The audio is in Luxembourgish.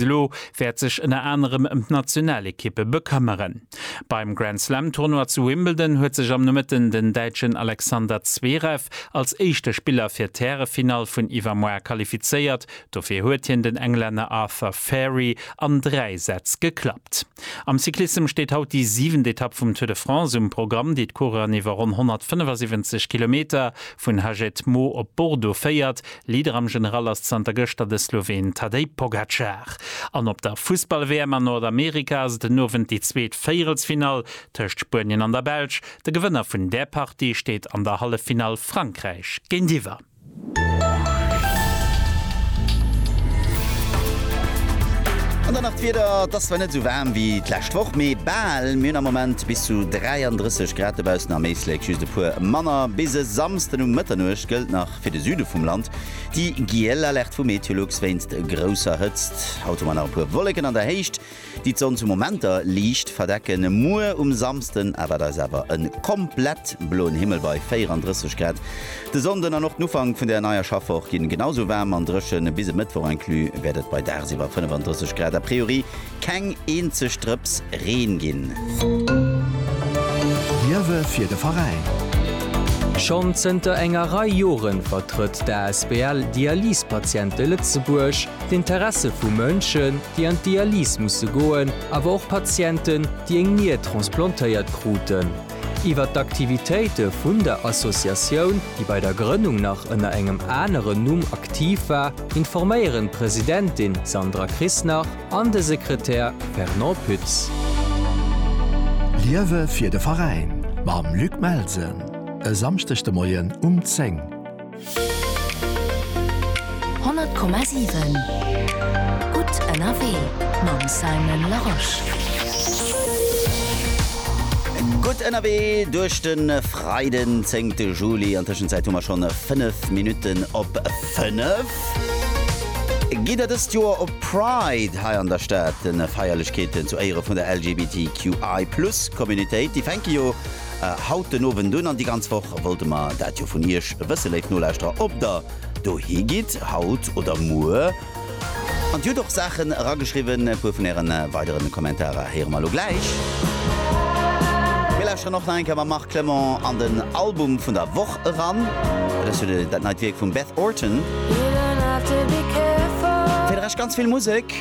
Elo wäert sech ënner anerem ëm d'Nationalekippe bekëmmeren. Beim Grand Slam Tournoi zu Wimbledon huet sech am Nomëtten den Däitschen Alexander Zverev als éischte Spiller fir d'Härefinall vun iwwermoar qualifizéiert. Dofir huet hien den Englänner Arthur Fairy an 3 Sätz geklappt. Am Cyclissem steet haut déi siwent Etapp vum Tour de France um Programm, déi d'Coureuren iwwer ronn 175 Kilometer vun Haget Maux op Bordeaux féiert. Leader am General ass zanter gëschter de Sloween Tadej Pogacar. An op der Fussball-WM an Nordamerika ass et en Owend déi zweet Véierelsfinall tëscht Spuenien an der Belsch. De Gewënner vun där Partie steet an der Halleffinall Frankräich géintiwwer. An dann nach d'Wieder, et ass zwar net esou waarm wéi d'lescht Woch, mee bal. Mir hunn am Moment bis zu 33 Grad dobaussen, am Éislek just e puer manner. Bis e Samsden um Mëtternuecht gëllt nach fir de Süde vum Land déi giel Alerte vu MeteoLux wéinst grousser Hëtzt. Haut hu mer nach e puer Wolleken an der Héicht, déi d'Sonn zu Momenter liicht verdecken. Muer um Samsden erwaart eis awer e komplett bloen Himmel bei 34 Grad. De Sonnden an och den Ufank vun der neier Schaffwoch ginn genau sou waarm an dréchen. Bis e Mëttwoch inclus wäert et bei dagsiwwer 35 Grad a priori keng eenzeg Drëps Reen ginn. Liewe fir de Veräin! Schonn zënter enger Rei Jore vertrëtt d'ASBL Dialysepatiente Lëtzebuerg. D'Interesse vu Mënschen, déi an d'Dialys musse goen, awer och Patienten, déi eng Nier transplantéiert kruten. Iwwer d'Aktivitéite vun der Associatioun, déi bei der Grënnung nach ënner engem aneren Numm aktiv war, informéieren d'Presidentin Sandra Krisnach an de Sekretär Fernand Pütz. Liewe fir de Veräin mam Luc Melsen e Samschdeg de Moien um 10. 100,7 Gutt ënnerwee mam Simon Larosche. Gutt ënnerwee duerch de Freiden, 10 Juli. An Tëschenzäit hu mer schonn 5 Minutten op 5. Gitt Der dëst Joer op Pride hei an der Stad? Feierlechkeeten zu Éiere vun der LGBTQI+ Communitéit, déi fänke jo haut den Owend un an déi ganz Woch wollte mer dat jo vun Iech wësse, léif Nolauschterer, ob Der dohi gitt, haut oder muer. An Dir hutt och Saachen erageschriwwen. E puer vun Äre weidere Kommentarer héiere mer elo gläich. Mir lauschteren och nach eng Kéier mam Marc Clement an den Album vun der Woch eran. Et ass jo dat neit Wierk vum Beth Orton. Fir de Rescht ganz vill Musek.